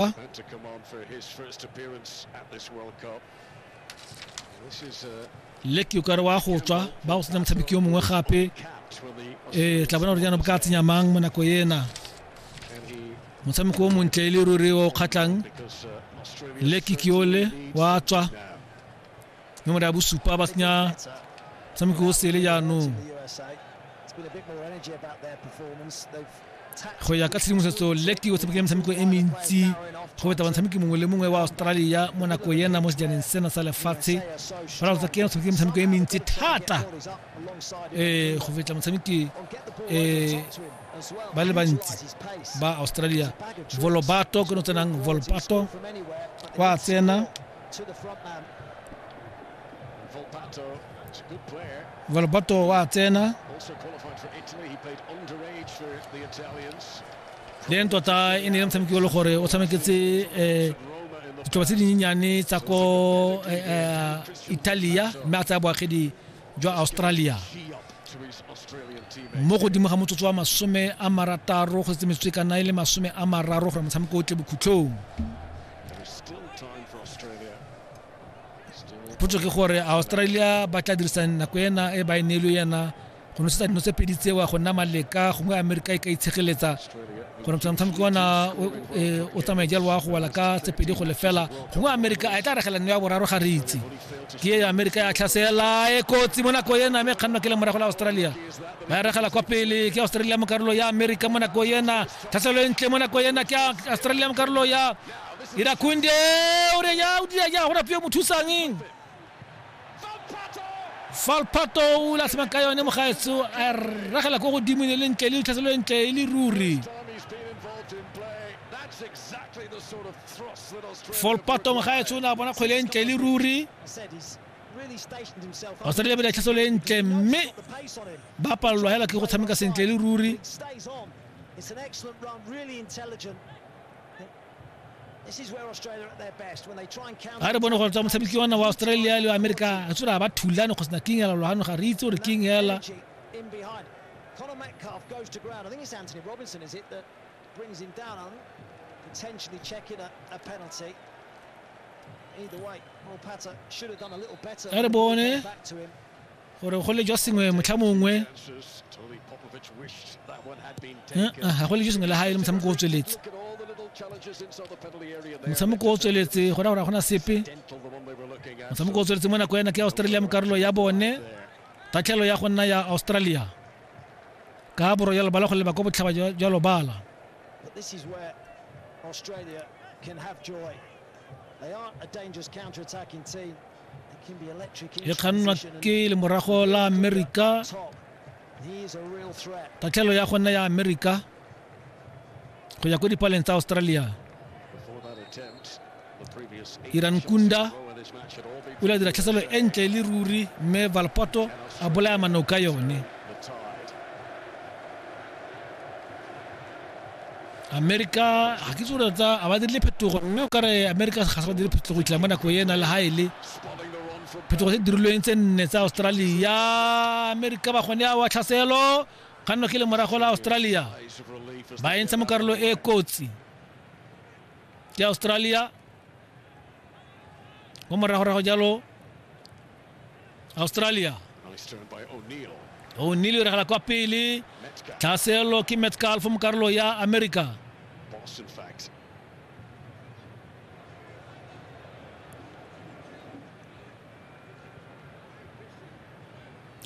Huh? Had to come on for his first appearance at this World Cup. This is a leki o kare wa go tswa ba go senya motshameki yo mongwe gape ee tla bona gore jaanong ka tsenya mang mo nako ena motshameko o montle e le ruri o kgatlhang leki ke ole wa tswa nomoro ya bosupa ba senya motshameko o sele jaanong go ya ka tshedimosetso leki o tshamekile metshameko e mentsi go feta batshameki mongwe le mongwe wa australia mo nako ena mo sejaneng sena sa lefatshe baralotsa ke o tshamekile metshameko e mentsi thata um go feta motshameki um ba le bantsi ba australia volobato ke no tsenang volpato kwa tsena Volpato wa tsena then tota e ne le motshameki o le gore o tshameketse um ditlhoba tse dinyenyane tsa ko italia mme a tsaya boagedi jwa australia mo godimo ga motsotso wa masome a marataro go setse metsotso e ka nna e le masome a mararo gore motshameko o tle bokhutlhong potso ke gore australia ba tla dirisang nako ena e ba e neelo ena go nosetsa dino tse pedi tsewa go nna maleka gongwe amerika e ka itshegeletsa gore motshameko ona e, o tsamaye jalo wa go wala ka tse pedi go lefela gongwe amerika a e tla regela nno ya boraro ga re itse ke ya amerika ya tlhasela e kotsi mo nako ena mme kgannwa ke le morago la australia ba e regela kwa pele ke australia mo karolo ya amerika mo nako ena tlhaselo e ntle mo nako ena ke australia mo karolo ya irakunde o re ya o dira ya go rapio mothusang falpato o latlhemang ka yone mogaetso a regela ko godimo ne le ntle le tlhaselo e ntle e le ruri folpato mogaetsho o ne a bona kgwele e ntle le ruri australia ba ditlhaso le ntle mme ba palelwa hela ke go tshameka sentle le ruri It's an excellent run, really intelligent. ga re bone gore tswa motshameki ona wa australia le america re tsora ba thulane go sena king ela logano ga re itse gore king ela Brings him down on potentially checking a, a penalty. Either way, Morpata should have done a little better. That bone. Back to him. gore go le jwa sengwe motlha mongwe ga go le jwa sengwe le ga e le motshameko o tsweletse motshameko o tsweletse go ra gore ga gona sepe motshameko o tsweletse mo nako yana ke australia mo karolo ya bone tatlhelo ya go nna ya australia ka borwa jwa lebala go leba kwa botlhaba jwa lobala Australia can have joy. They aren't a dangerous counter-attacking team. e kgannwa ke lemorago la amerika tatlhelo ya go nna ya amerika go ya ko dipaleng tsa australia iran kunda o la dira tlhaselo e ntle le ruri mme valpoto a bolaya manoka yone amerika ga ke tsore tsa a ba dirile phetogo mme o kare amerika ga se ba dire phetogo itlha mo nako ena le ga e le phetogo tse dirilweng tse nne tsa australia amerika ba gone a wa tlhaselo ga nno ke le morago la australia ba entsha mo karolo e kotsi ke australia mo moragorago jalo australia o'neil o regela kwa pele tlhaselo ke metcalf mo karolo ya america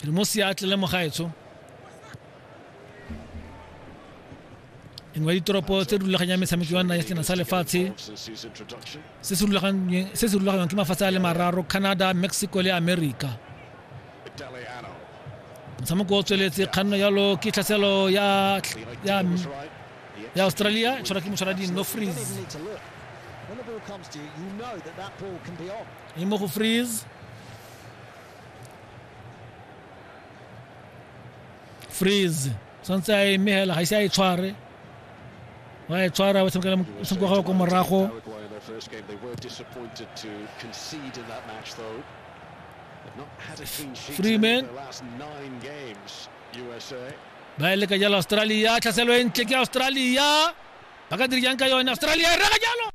re mo seatle le mogaetsho engwe ditoropo tse di rulaganyang metshameko ya nna ya sena sa lefatshe se se rulaganyang ke mafatshe a le mararo canada mexico le america motshameko o tsweletse kganno yalo ke tlhaselo ya ya australia tshwara ke motshwara dinno freeze i mo go freeze freeze santse a eme hela ga ise a e tshware wa e tshwara wa tshamekela motshameko wa gago ko morago freeman ba e leka jalo australia tlhaselo e ntle ke australia ba ka diri jang ka yone australia e rega jalo